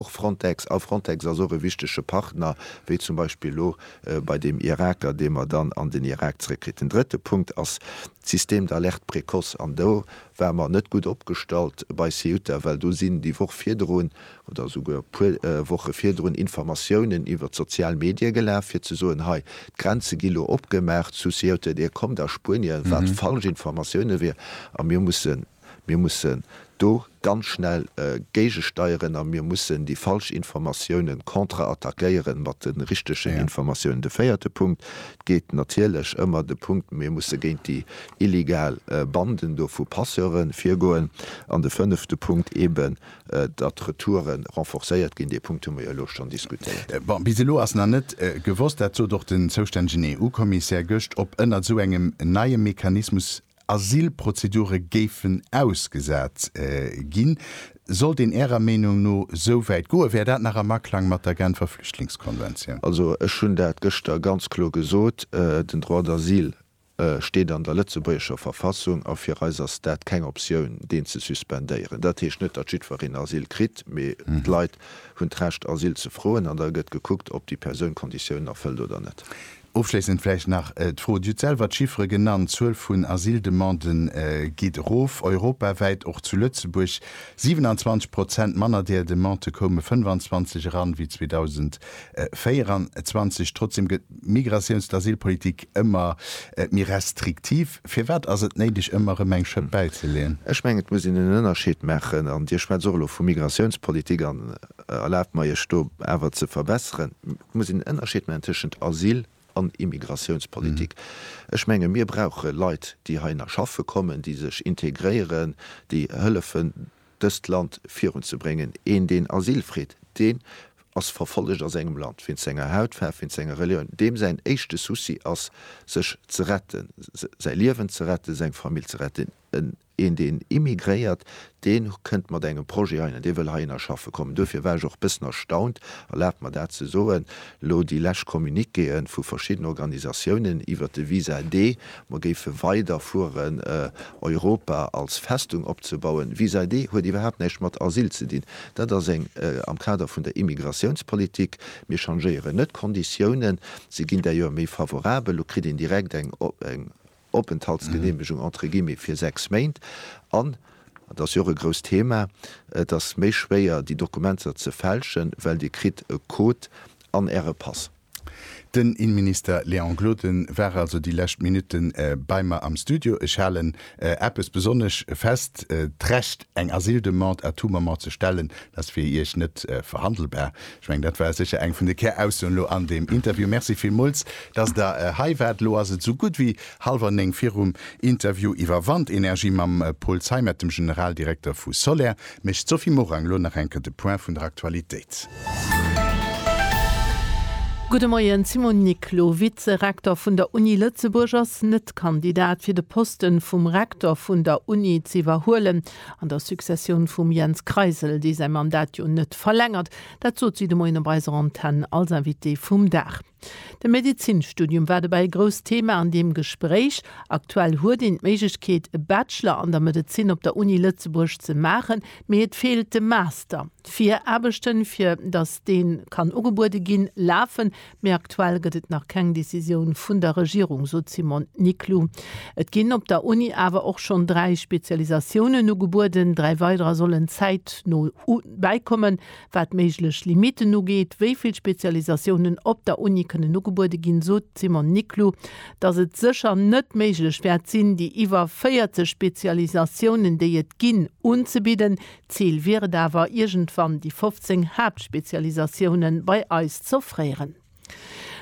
Och Frontex, a Frontex ass och e wichtege Partner, wéi zum Beispill elo bei deem Iraker, dee mer dann an den Irak zréckkritt. Den drëtte Punkt ass d'Système d'alerte précoce. An do ware mer net gutt opgestallt bei Ceuta, well do sinn déi Woch virdrun oder esouguer e puer Woche virdrun Informatiounen iwwer d'sozial Medie gelaf, fir ze soen, hei, d'Grenze gi lo opgemaach zu Ceuta, Dir kommt a Spuenien, wat falsch Informatiounen wier. A mir mussen. Mir mussen do ganz schnell géigesteieren a mir mussen déi falsch Informatiounen kontraattackéieren mat de richtegen Informatiounen. De véierte Punkt geet natierlech ëmmer de Punkt, mir musse géint déi illegal Banden do vu Passeure virgoen. An de fënnefte Punkt eeben, datt d'Retoure renforcéiert ginn. Dee Punkt hu mer jo elo schonn diskutéiert. Bon, bis elo ass nach net gewosst, dat sot och den zoustännegen EU-Kommissär gëscht, ob ënnert esou engem neie Mechanismus Asylprozedure géifen ausgesat ginn. Sollt een Ärer Meenung no esou wäit goen, wär dat nach am Aklang mat der Genfer Flüchtlingskonventioun? Also ech hunn dat gëschter ganz kloer gesot, den Droit d'asile steet an der lëtzebuergescher Verfassung a fir eis ass dat keng Optioun deen ze suspendéieren. Dat heescht net, datt jiddwereen Asyl kritt, mee d'Leit hunn d'Recht Asyl ze froen an da gëtt gekuckt, ob déi Persoun d'Konditiounen erfëllt oder net. Ofschléissend vläicht nach d'Fro, Dir hutt selwer d'Chiffere genannt, d'Zuel vun Asyldemande geet erof, europawäit, och zu Lëtzebuerg. 27 Prozent manner där Demandë koume 25 eran wéi 2024. Trotzdeem gëtt d'Migratiouns-, d'Asylpolitik ëmmer méi restriktiv. Firwat ass et néideg, ëmmer erëm eng Schëpp bäizeleeën? Ech mengen, et muss een en Ënnerscheed maachen, an Dir schwätzt och elo vu Migratiounspolitik an Erlaabt mer, Iech do awer ze verbesseren. Et muss een en Ënnerscheed maachen tëschent Asyl an Immigratiounspolitik. Ech menge mir brauche Leit, déi heihinner schaffe kommen, déi sech integréieren, déi hëllefen, dëst Land virunzebréngen. Een, deen Asyl freet, deen ass verfollegt a sengem Land, wéinst senger Hautfaarf, wéinst senger Relioun. Deem säin éischte Souci ass, sech ze retten, säi Liewen ze retten, seng Famill ze retten. Een deen immigréiert, deen kënnt mat engem Projet heihin an dee wëll heihinner schaffe kommen. Duerfir war ech och e bëssen erstaunt, erlaabt mer dat ze soen, elo déi lescht Communiquéë vu verschidden Organisatiounen iwwert de Visa D, mer géife weider fueren Europa als Festung opzebauen. Visa D huet iwwerhaapt näischt mat Asyl ze dinn. Dat ass eng am Kader vun der Immigratiounspolitik. Mir changéieren net d'Konditiounen, se ginn d'ailleurs méi favorabel, elo kritt een direkt eng Openthaltsgeneemegung entre guillemets fir sechs Méint an, an dat ass jo och e grousst Thema, et ass méi schwéier déi Dokumenter ze fälschen, well Dir kritt e Code an Äre Pass. Den Innenminister Léon Gloden war also déi lescht Minutte bei mer am Studio. Ech halen eppes besonnesch fest, D'Recht eng Asyldemande à tout moment ze stellen, dat ass fir Iech net verhandelbar. Ech mengen, dat war sécher eng vun de Käraussoen elo an deem Interview. Merci villmools, dass Der hei waart. Elo ass et esou gutt wéi hallwer néng. Virum Interview iwwer Wandenergie mam Paul Zeimet, dem Generaldirekter vu Soler, mécht d'Sophie Morang elo nach eng Kéier de Point vun der Aktualitéit. Gudde Moien. D'Simone Nicole, elo Vize-Rektor vun der Uni Lëtzebuerg, ass net Kandidat fir de Posten vum Rektor vun der Uni ze iwwerhuelen. An der Successioun vum Jens Kreisel, dee säi Mandat jo net verlängert, dat sot si de Moien op eiser Antenn als Invitée vum Dag. De Medezinstudium war dobäi e grousst Thema an deem Gespréich. Aktuell huet een d'Méiglechkeet, e Bachelor an der Medezin op der Uni Lëtzebuerg ze maachen, mee et feelt de Master. D'Viraarbechten, fir datt dee kann ugebuede ginn, lafen, Mee aktuell gëtt et nach keng Decisioun vun der Regierung, sot d'Simone Niclou. Et ginn op der Uni awer och schonn dräi Spezialisatiounen ugebueden. Dräi weiderer sollen zäitno bäikommen. Wat méiglech Limitten ugeet, wéi vill Spezialisatiounen op der Uni kënnen ugebuede ginn, sot d'Simone Niclou, datt et sécher net méiglech wäert sinn, déi iwwer 40 Spezialisatiounen, déi et ginn, unzebidden. Zil wier et awer, iergendwann déi 15 Haaptspezialisatioune bei eis z'offréieren.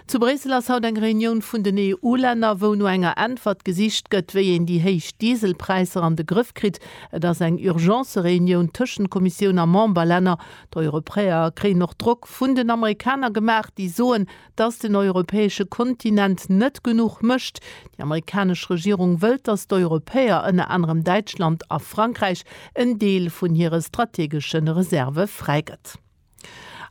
Zu Bréissel ass haut eng Reunioun vun den EU-Länner, wou no enger Äntwert gesicht gëtt, wéi een déi héich Dieselpräisser an de Grëff kritt. Et ass eng Urgence-Reunioun tëschent Kommissioun a Memberlänner. D'Europäer kréien och Drock vun den Amerikaner gemaach, déi soen, dass den europäesche Kontinent net genuch mécht. Déi amerikanesch Regierung wëllt, dass d'Europäer, ënner anerem Däitschland a Frankräich, en Deel vun hire strategesche Reserve fräigëtt.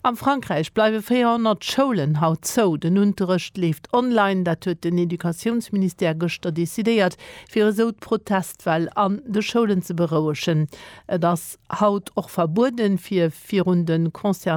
Am Frankräich bleiwe 400 Schoulen haut zou. Den Unterrecht leeft online. Dat huet den Educatiounsministère gëschter decidéiert, fir esou d'Protestwell an de Schoulen ze berouegen. Et ass haut och verbueden, fir virun de concernéierte